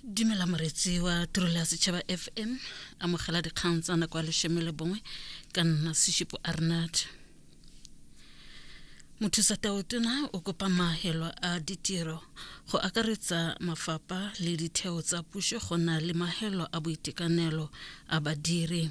dumela moretsi wa tirelo ya setšhaba fm amogela dikgang tsa nako ya leshome le bongwe ka nna seshipo arnad mothusa taotona o kopa maahelo a ditiro go akaretsa mafapha le ditheo tsa puso go na le maahelo a boitekanelo a badiri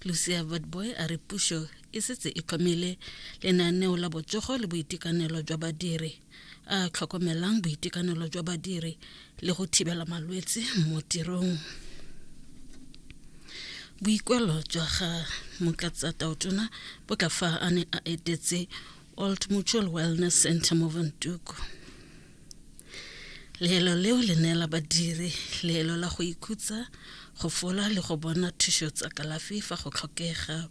lucia vadboy a re puso e setse e tlhomile lenaneo la botsogo le boitekanelo jwa badiri a tlhokomelang boitekanelo jwa badiri le go thibela malwetse mo tirong boikwelo jwa ga mokatsa taotona bo tla fa a ne a etetse old mutual wellness center mo vantuku leelo leo le neela badiri leelo la go ikhutsa go fola le go bona thušo tsa kalafi fa go tlhokega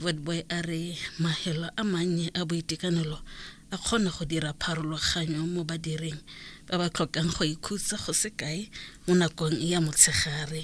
Wordboy a re mahelo a mannye a boitekanelo a kgona go dira pharologanyo mo badiring ba ba tlhokang go ikhutsa go se kae mo nakong ya motshegare.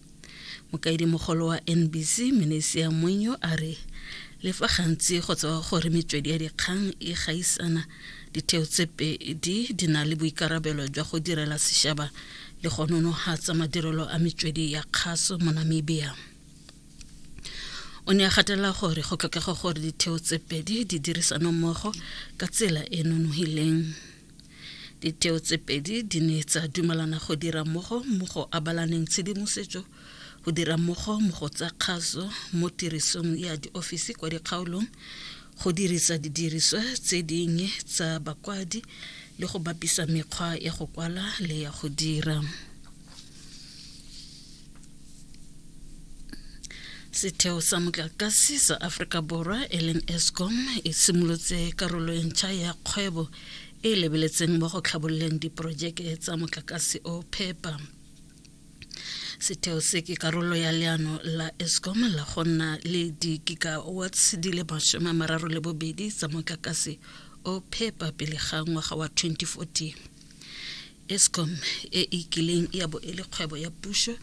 mokaedimogolo wa nbc menesia mwenyo a re le fa gantsi go tsewa gore metswedi ya dikgang e gaisana ditheo tse pedi di na le boikarabelo jwa go direla sešaba le go nonogatsa madirelo a metswedi ya kgaso mo namibia o ne a gatelela gore go tlhokega gore ditheo tse pedi di dirisano mmogo ka tsela e nonogileng Ditheo tse pedi di ne tsa dumalana go dira mmogo mo go abalaneng tshedimosetso, go dira mmogo mo go tsa kgaso mo tirisong ya diofisi kwa dikgaolong, go dirisa didiriswa tse dingwe tsa bakwadi le go bapisa mekgwa ya go kwala le ya go dira. setheo sa motlakase sa aforika borwa e leng escom e simolotse karolo e ntšha ya kgwebo e e lebeletseng mo go tlhabololeng diporojeke tsa motlakase o phepa setheo se ke karolo ya leano la escom la go nna le di-gigawatts di le masome a mararo le bobedi tsa motlakase o phepa pele ga ngwaga wa 2040 Eskom e e kileng ya bo e le kgwebo ya puso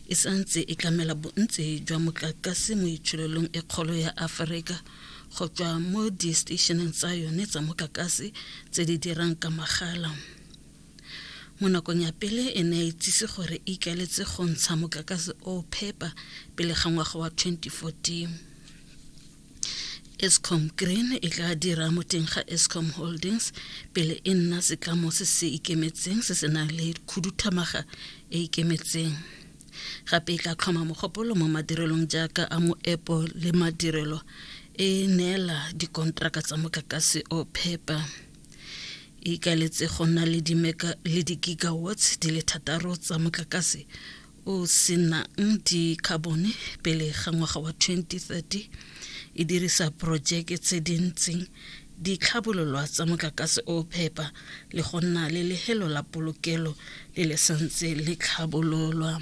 e santse e tlamela bontsi jwa motlakase mo itshololong e kgolo ya Aforika go tswa mo disteisheneng tsa yone tsa motlakase tse di dirang ka magala. Mo nakong ya pele e ne ya itsise gore e ikaletse go ntsha motlakase o phepa pele ga ngwaga wa 2014. escom green e tla dira mo teng ga escom holdings pele e nna setlamo se se ikemetseng se se nang le khuduthamaga e ikemetseng gape e tla tlhoma mogopolo mo madirelong jaaka a moepo le madirelo e neela dikontraka tsa motlakase o phepa e ikaletse go nna le di-gigawatts di le thataro tsa motlakase o senang dikhabone pele ga ngwaga wa 2030 e dirisa porojeke tse di ntseng di tlhabololwa tsa motlakase o phepa le go nna le lehelo la polokelo le le santse le tlhabololwa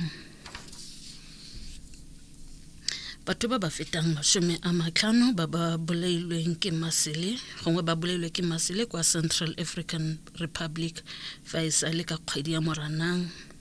batho ba ba fetang masome a matlhano ba ba bolailweng ke masele gongwe ba bolailwe ke masele kwa central african republic fa e sa le ka kgwedi ya moranang